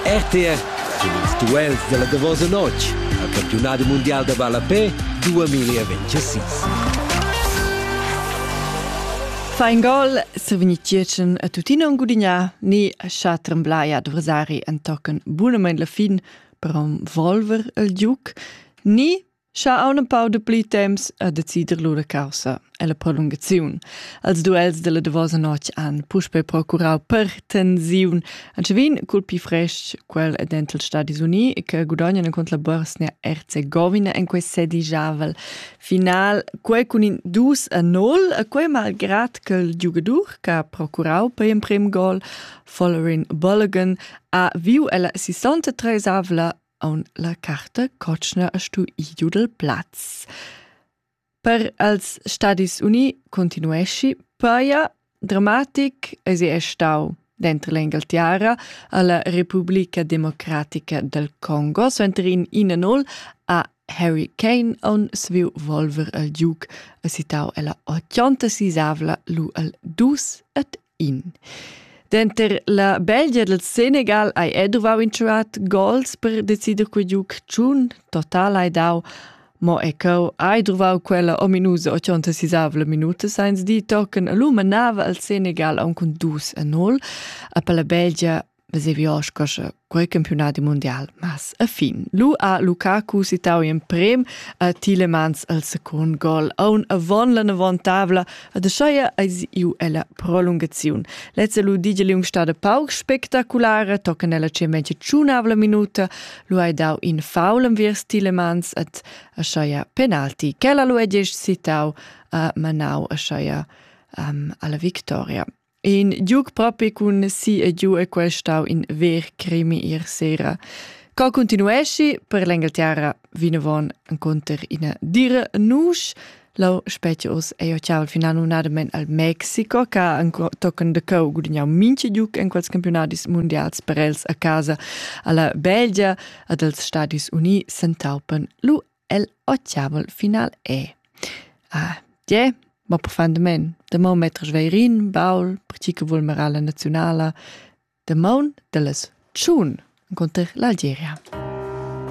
RTR sin ils duels dalla davosa notg al campiunadi mundial da ballapé 2026. Fa in gol se veni tgierchen a tuttina un gudignar ni a scha tremblai adversari en tocken bunamein la fin per volver el giuc ni Scha auna pau de pli temps a decider lura causa e la prolungaziun. Als duels della davosa notg han puspe procurau per tensiun anche vin cul pi fresc quel dental Stadis Uni che gudagnano contro la Bosnia Herzegovina in quei sedijavel final quei cun in 2 a 0 e quei malgrad che il giugadur che ha procurau per in prim gol Follering Bulligan ha viu ella 63 avla aun la carta cotschna a stu idiu dal plaz. Per als Stadis Uni continuesci paia dramatic es è stau dentro l'Engalterra alla Repubblica Democratica del Congo, suenter in 1-0 a Harry Kane on sviu volver al Duke a citau ella 86avla lu al 2 et In. Denter la Belgia dal Senegal hai ei duvau in tschuat gols per decider quei giug tschun. Total hai dau Mo e cheu hai druvau quella ominusa 86 minuta sainz di tochen lu manava al Senegal aunc cun dus a 0. A per la Belgia vesevi osca sche quei campionadi mundial mas a fin lu a Lukaku citau in prem a Tilemans al secund gol aun avon la navontabla a de scheia eis iu ella prolungaziun lezza lu digel um stada pauc spektaculare tocca nella cemetje tschunavla minuta lu hai dau in faul am viers Tilemans at a scheia penalti quella lu è gest citau a Manau a scheia um, alla victoria In giug propi cun si e giu è quel stau in ver crimi ier sera. Co continuesci per l'Engelterra vinavon enconter ina dire nusch. Lau specie os ei ciao al final un admen al Mexico che tochen de cau gudignau minci giuc in quels campionadis mondials per els a casa alla Belgia ad els Stadis Uni sentaupen lu el ochiavel final è. Ah, tge? Ma profundamain. Damaun metr sveirin, baul, pertgi che vul merar la naziunala, damaun de las tschun, enconter l'Algeria.